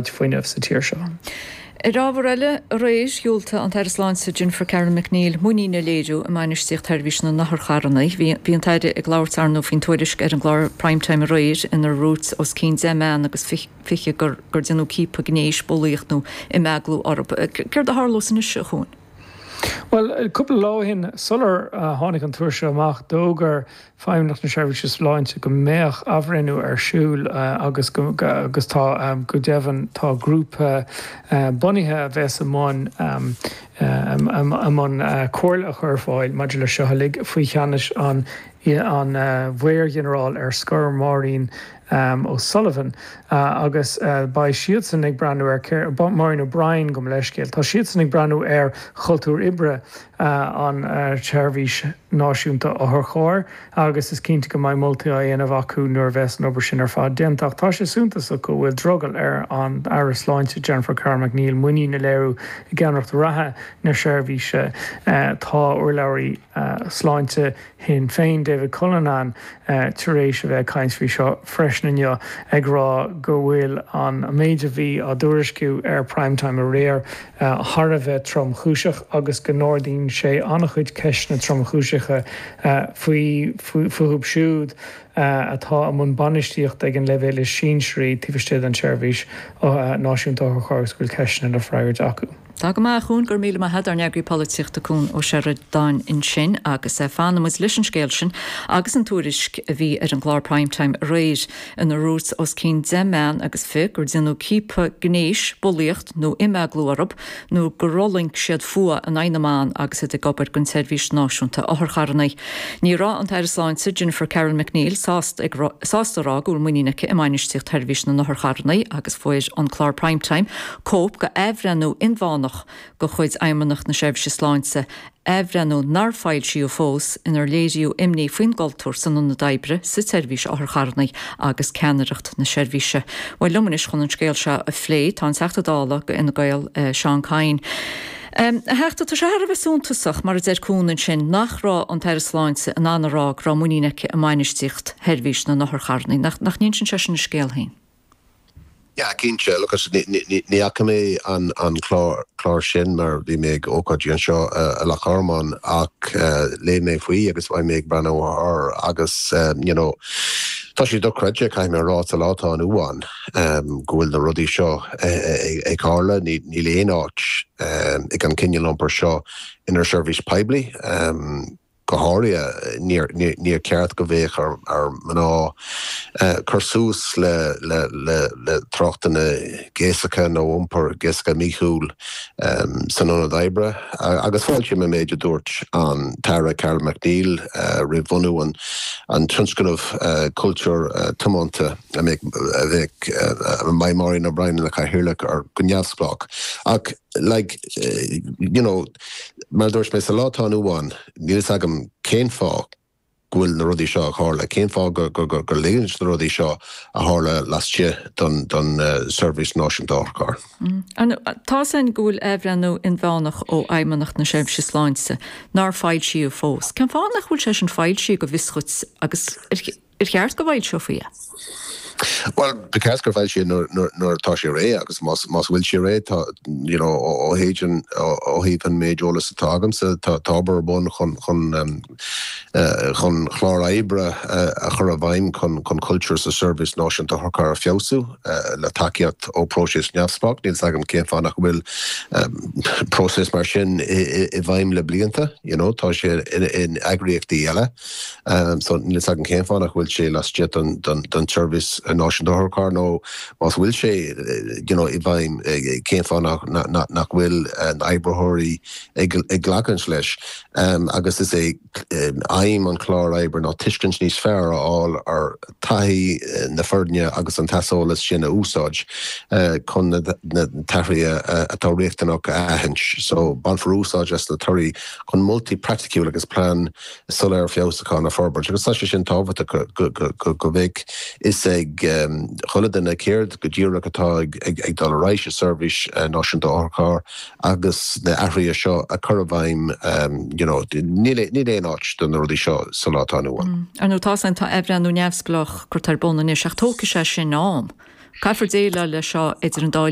fuinnimh sa tír seo. Ar ábhar eile aréir, dhiúltaigh an tAire Sláinte Jennifer Carroll MacNeill muinín a léiriú i mbainistíocht sheirbhís na n-otharcharranna. Bhí an tAire ag labhairt arnó faoin tuairisc ar an gclár Prime Time aréir inar dhúirt os cionn deich mbean agus fiche gur déanadh ciapadh gnéis, bulaíocht nó imeaglú orthu. Céard a tharlós anois, a Chuain? Bhuel, cúpla lá ó shin, sular tháinig an tuairisc seo amach, d'fhógair Feidhmeannacht na Seirbhíse Sláinte go mbeadh athbhreithniú ar siúl agus agus tá, go deimhin, tá grúpa bunaithe a bheas i mbun i mbun comhairle a chur ar fáil maidir leis seo uilig faoi cheannais an an Mhaor-Ghinearál ar scor, Maureen um O'Sullivan agus beidh siadsan ag breathnú ar Maureen O'Brien, gabh mo leithscéal, tá siadsan ag breathnú ar chultúr oibre an tSeirbhís Náisiúnta Otharchairr agus is cinnte go mbeidh moltaí á dhéanamh acu nuair a bheas an obair sin ar fad déanta. Ach tá sé suntasach go bhfuil drogall ar an Aire Sláinte, Jennifer Carroll MacNeill, muinín a léiriú i gceannaireacht reatha na seirbhíse. Tá urlabhraí Sláinte Shinn Féin, David Cullinane, tar éis a bheith ag caint faoi seo freisin inniu, ag rá go bhfuil an méid a bhí á dtuairisciú ar Prime Time aréir thar a bheith tromchúiseach agus go n-ardaíonn sé an-chuid ceisteanna tromchúiseacha fúthu siúd atá i mbun bainistíochta ag an leibhéal is sinsearaí taobh istigh den tSeirbhís Náisiúnta Otharcharr agus go bhfuil ceisteanna le freagairt acu. Tá go maith, a Chuain, go raibh míle maith agat, ár n-eagraí polaitíochta Cuan Ó Seireadáin ansin agus fanfaidh muid leis an scéal sin agus an tuairisc a bhí ar an gclár Prime Time aréir inar dhúirt os cionn deich mbean agus fiche gur déanadh ciapadh gnéis, bulaíocht nó imeaglú orthu nó gur fhulaing siad fuath in aghaidh na mban agus iad ag obair don tSeirbhís Náisiúnta Otharcharranna. Ní raibh an tAire Sláinte, Jennifer Carroll MacNeill sásta a rá go bhfuil muinín aici i mbainistíocht Sheirbhís na nOtharcharranna agus fuair an clár Prime Time cóip de athbhreithniú inmheánach de chuid Fheidhmeannacht na Seirbhíse Sláinte, athbhreithniú nár foilsíodh fós, inar léiríodh imní faoin gcultúr san ionad oibre sa tSeirbhís Otharcharrannaí agus ceannaireacht na seirbhíse. Bhuel, liom anois chun an scéal seo a phlé tá an Teachta Dála do Fhine Gael, Seán Kyne. A Theachta, tá sé thar a bheith suntasach, mar a deir Cuan ansin, nach raibh an tAire Sláinte in ann a rá go raibh muinín aici i mbainistíocht Sheirbhís na nOtharcharrannaí. Nach n-insíonn sé sin a scéal féin? Yeah, cinnte, agus ní fhaca mé an clár sin mar bhí mé ag ócáidí anseo i Loch Garman ach léigh mé faoi agus beidh mé ag breathnú air agus you know tá sé dochreidte, caithfidh mé a rá, sa lá atá inniu ann go bhfuil na rudaí seo ag tarlú, níl aon áit ag an cineál iompair seo inár seirbhís poiblí. Go háirithe, níor cheart go mbeadh ar mhná cur suas le tráchtanna gnéasacha nó iompar gnéasacha míchuí san ionad oibre agus fáiltím, mar a dúirt an tAire Carroll MacNeill roimh bhunú an tionscnaimh Cultúr Tiomanta a bheidh Máire Ní Bhriain ina cathaoirleach air go neamhspleách. like, you know, mar a dúirt mé, sa lá atá inniu ann, níl a fhios agam cén fáth go bhfuil na rudaí seo a tharla, cén fáth gur ligeann na rudaí seo a tharla laistigh den Seirbhís Náisiúnta Otharcharr. Tá, ar ndóigh, athbhreithniú inmheánach ó Fheidhmeannacht na Seirbhíse Sláinte nár foilsíodh fós? Cén fáth nach bhfuil sé sin foilsithe go bhfios duit agus ar. Ar cheart go bhfoilseofaí é? Bhuel, ba cheart go bhfoilseofaí é nuair atá sé réidh agus más bhfuil sé réidh, ó thaobh an méid eolas atá agamsa, tá obair ar bun chun chlár oibre a chur i bhfeidhm chun cultúr sa Seirbhís Náisiúnta Otharcharr a feabhsú, le tacaíocht ó próiseas neamhspleách. Níl 's agam cén fáth nach bhfuil próiseas mar sin i bhfeidhm le blianta, you know, tá sé in eagraíochtaí eile. Níl a fhios agam cén fáth nach bhfuil sé laistigh den tSeirbhís Náisiúnta Otharcharr nó, más bhfuil sé, you know, i bhfeidhm, cén fáth nach bhfuil na hoibritheoirí ag glacaint leis. Agus is é aidhm an chláir oibre ná tuiscint níos fearr a fháil ar thaithí na foirne agus an t-aiseolas sin a úsáid chun na t-athruithe atá riachtanach a aithint. So bainfear úsáid as na torthaí chun moltaí praiticiúla agus plean. soiléir feabhsúcháin a forbairt agus tá sé sin tábhachtach go mbeidh a fhios ag chuile duine céard go díreach atá ag dul ar aghaidh sa tSeirbhís Náisiúnta Otharcharr agus na athruithe seo a chur i bhfeidhm you know níl aon áit do na rudaí seo sa lá atá inniu ann. Mm. Ar ndóigh tá, tá athbhreithniú neamhspleách curtha ar bun anois ach tógfaidh sé sin am. Caithfear déileáil le seo idir an dá